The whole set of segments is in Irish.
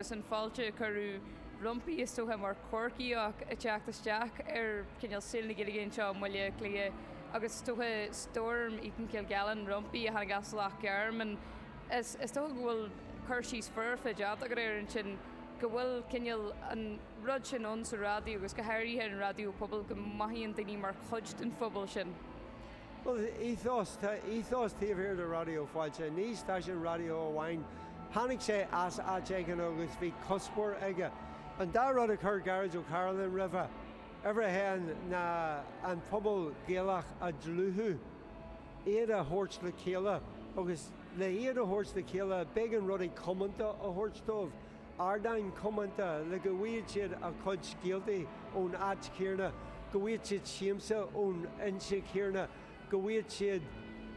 agus an fáilte a cuireadh roimpi is dócha mar Chorcaíoch ag teacht isteach ar chineál saol na Gaeilge anseo i mBaile Átha Cliath agus is dócha Storm Eaton-Kilgallen romham a tháinig as Loch Garman is is dócha go bhfuil cur síos foirfe déanta agat air ansin go bhfuil cineál an rud sin ann sa raidió agus go háirithe an raidió pobail go mothaíonn daoine mar chuid den phobal sin. Bhuel, ethos, tá ethos taobh thiar de Raidió Fáilte. Ní stáisiún raidió amháin. Tháinig sé as áit éigin agus bhí cuspóir aige. An dá rud a chuir Gearóid Ó Cairealláin roimhe, uimhir a haon, ná an pobal Gaelach a dhlúthú, iad a thabhairt le chéile agus le hiad a thabhairt le chéile b'éigean rudaí comónta a thabhairt dóibh. ardáin comónta le go bhfaigheadh siad a gcuid scéaltaí ón áit chéarna, go bhfaigheadh siad siamsa ón fhoinse chéarna, go bhfaigheadh siad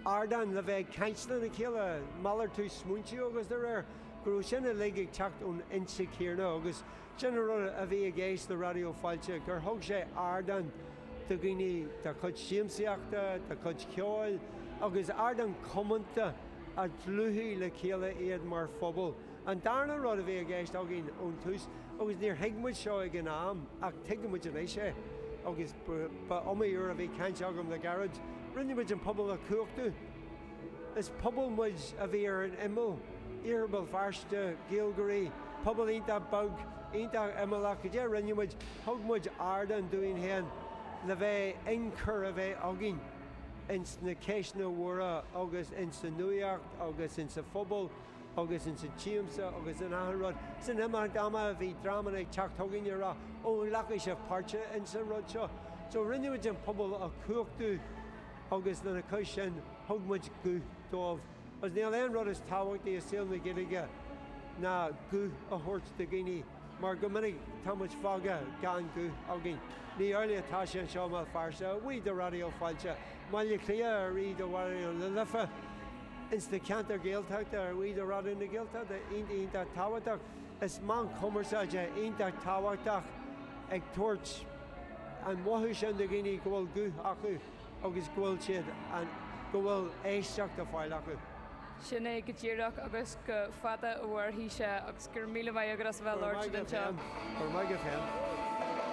ardán le bheith ag caint lena chéile, malartú smaointe agus de réir, go raibh sin uilig ag teacht ón fhoinse chéarna agus sin an rud a bhí i gceist le Raidió Fáilte, gur thug sé ardán do dhaoine dá gcuid siamsaíochta, dá gcuid ceoil agus ardán comónta a dhlúthaigh le chéile iad mar phobal. An darna rud a bhí i gceist againn ón tús, agus níor thuig muid seo ag an am ach tuigimid anois é, agus ba iomaí uair a bhí caint agam le Gearóid, rinne muid an pobal a chumhachtú. Is pobal muid a bhí ar an imeall, Iarthar Béal Feirste, Gaeilgeoirí, pobal iontach beag, iontach imeallach, cad é a rinne muid, thug muid ardán dúinn féin le bheith inchur a bheith againn ins na ceisteanna móra agus insa nuaíocht agus insa phobal. agus ins an tsiamsa agus in achan rud. Is in imeacht ama bhí dreamanna ag teacht chugainn ag rá Ó an nglacfaidh sibh páirt ins an rud seo? So rinneamid an pobal a chumhachtú agus lena chois sin thug muid guth dóibh agus níl aon rud is tábhachtaí i saol na Gaeilge ná guth a thabhairt do dhaoine mar go minic tá muid fágtha gan guth againn. Ní amhlaidh atá sé anseo i mBéal Feirste, a bhuí do Raidió Fáilte. I mBaile Átha Cliath, a bhuí do Raidió na Life. Ins na ceantair Gaeltachta a bhuí do Raidió na Gaeltachta iontach tábhachtach. Is meáin cumarsáide iontach tábhachtach ag tabhairt an mothú sin do dhaoine go bhfuil guth acu agus go bhfuil siad an, go bhfuil éisteacht á fáil acu. Sin é go díreach agus go fada a mhairfidh sé agus go raibh míle maith agat as a bheith ag labhairt ar an tseó. Go raibh maith agat féin.